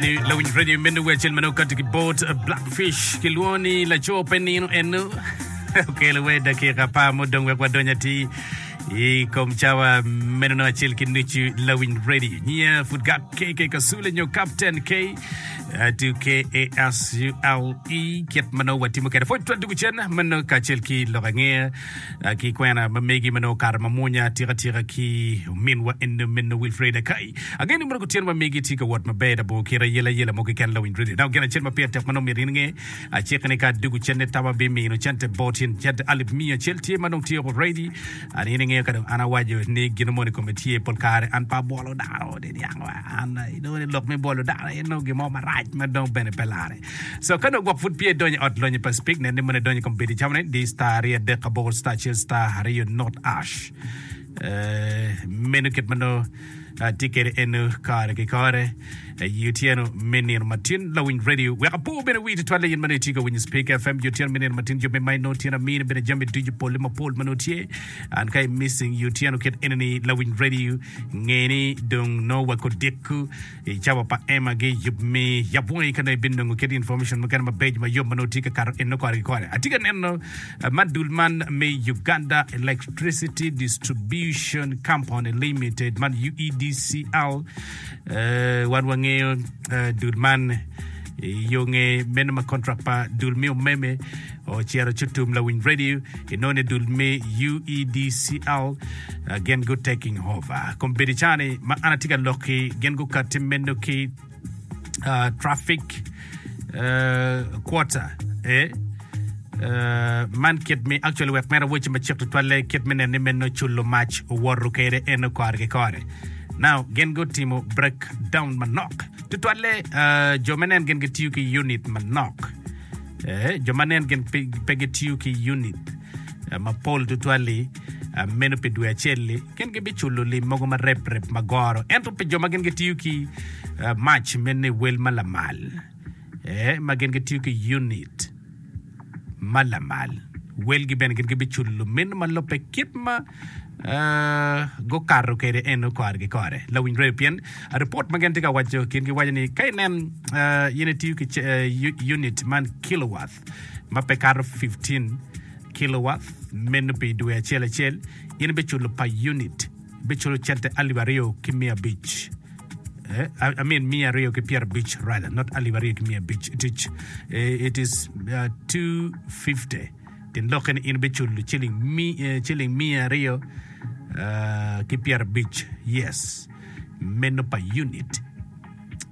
ni lawiny radio i mene wecel mano kati ki bot blackfish ki lwongo ni laco pe nino eno okelo we dakika pa mudong wek wadonya ti i kom cawa meno no acel ki nucu lawiny radio nyiya pud gak kk kasule nyo captain k atu k a s u l e kit mano watimo kede pwod twa dugu cen mano kacel ki lok angeya ki kwena ma megi ma nongo okato ma mwonya atika tika ki ominwa eno meno Wilfreda Kayi. Agen ni mono kutyen ma megi tye ka wot maber i labongo kit ayela ayela mo keken lawiny redio. Nako gin acel ma pire tek ma nongo myero in inge, aciki ni ka adwogo cente tam abimino cente bot tyen cente alip miya acel tye ma nongo tyeko ready an in ingeyo ka dong an awaco ni gino moni kome tye pol kare an pe abwolo dano niang wa an i nongo ni lok me bwolo dano en nongo gin mo marac ma dong bene pe larre. So ka nongo gwok pud peya idonyo i ot lonyo pa Spig, nen ni mono idonyo i kombedi camo ni di, star aryo adek aboro, star acel star aryo not ash. Eh, meno kit ma nongo atye kwede eno kare ki kare eh, i otyeno me nino matin lawiny radio wek apo bene wi tutwalle in ma nongo itye ka winyo Spig FM i otyeno me nino matin jo me mac nongo tyen amini bene jami ducu polle mapol ma nongo tye an ka i missing i otyeno kit enini lawiny radio ngeni dong nongo wakodiko I cawa pa Emma gi yub mi yab wongi ka nongo ibinongo kit information mukene mabeco ma yom ma nongo tye ka kato eno kore ki kore. Atye ka neno ma dul man me Uganda Electricity Distribution Company Limited man UEDCL, wan wangeyo dul man I yo nge meno ma kontrak pa dul me umeme ocito ci otum lawiny radio, inongo ni dul me UEDCL uh, gin gu taking over. Kom bedi cani ma an atye ka lok ki gin gukatti meno ki uh, traffic uh, quarter e Uh, man kit mi actually wek mera weche macek tutwalle kit me neno ni meno culo mac owoto kwede en okore ki kore now gin gutimo breakdown manok Tutwalle, jo ma nen gin gitiyo ki yunit manok. Jo ma nen gin pe gitiyo ki yunit mapol tutwal-li, meno pi dwe acel-li, gin gibiculo lim mogo ma rep rep ma goro. Ento pi jo ma gin gitiyo ki mac me niwel ma lamal, ma gin gitiyo ki yunit, ma lamal. Welgi bene gin gibiculo luminno ma lubbe kit ma gukato kwede eno kore ki kore. Lawiny rweyo pien ripot ma gin tye ka waco, gin giwaco ni ka inen in itiyo ki unit man kilowatt ma pe kato 15 kilowatt meno pi dwe acel acel, in ibiculo pa unit, ibiculo cente alip aryo ki miya abic. I mean mia aryo ki pyera abic rather not alip aryo ki mia abic it is, eh, it is uh, 250 tin lokke ni in biculo ciling mi, eh, ciling mia aryo uh, ki pyera abic yes meno pa unit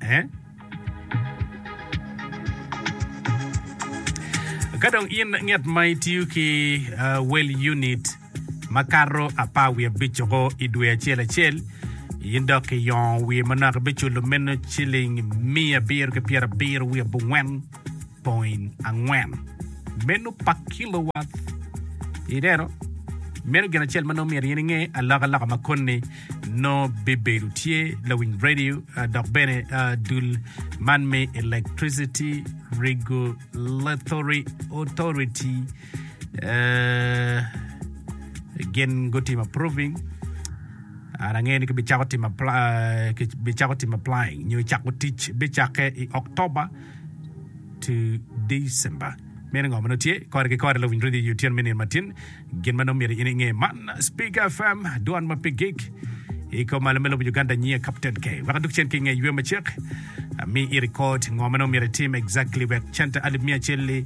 eh? ka dong in ngat ma itiyo ki uh, well unit makato apar wiye abic-co i dwe acel acel, in dok iyongo wiye manok ibiculo meno ciling miya abiro ki pyera abiro wiye abongwen poin angwen meno pa kilowath. Ineno? Meno gin acel ma nongo myero in inge, alokaloka ma koni nongo bibedo tye, lawiny radio dok bene dul man me electricity regulatory authority. gin gutimo approving and angeyo ni kibicako timo applying nyo cako tic bicakke i October to December meno ngo ma nongo tye kore ki kore lawiny radio otyeno me nino matin gin ma nongo myero in inge man Speak FM dwan ma pe gig iko malo me lobo Uganda nyiya Captain K wek adok cen ki nge ywe macek ami i record ngo ma nongo myero itim exactly wek cente alip miya acel-li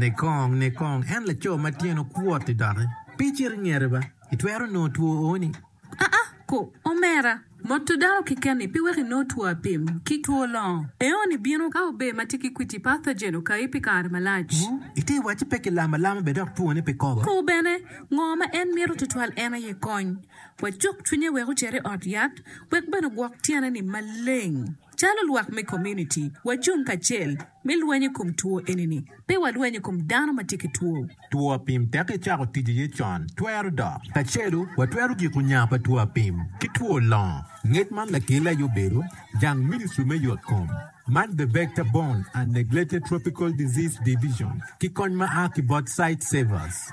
Nikong, nikong, en laco ma tyene okwot-ti doki. Pe icit i ngete ba, itwero nongo two owoni. Aa, ko, omera, moto dano keken-ni pe weko inong two apim ki two longo. Eoni bino ka ober ma tye ki kwiti pathogen okayi pi kare malac. Wu, ite iwacci pe ki lamo alama bene dok twone pe kobo. Ko bene, ngo ma en mito tutwal en aye kony. Wacuk cwinye wek ocer i ot yat wek bene ogwok tyene-ni maleng. Calo lwak me komuniti, wacung kacel me lweny i kom two eni-ni, pe walweny i kom dano ma tye ki two. Two apim tek ecako tic iye con twero dok. Kacelu watwero giko nya pa two apim ki two longo, ngec man lakelli aye obedo jang Ministry me Yot Kom, Man the Vector Borne and Neglected Tropical Disease Division ki kony ma a ki bot Sight Savers.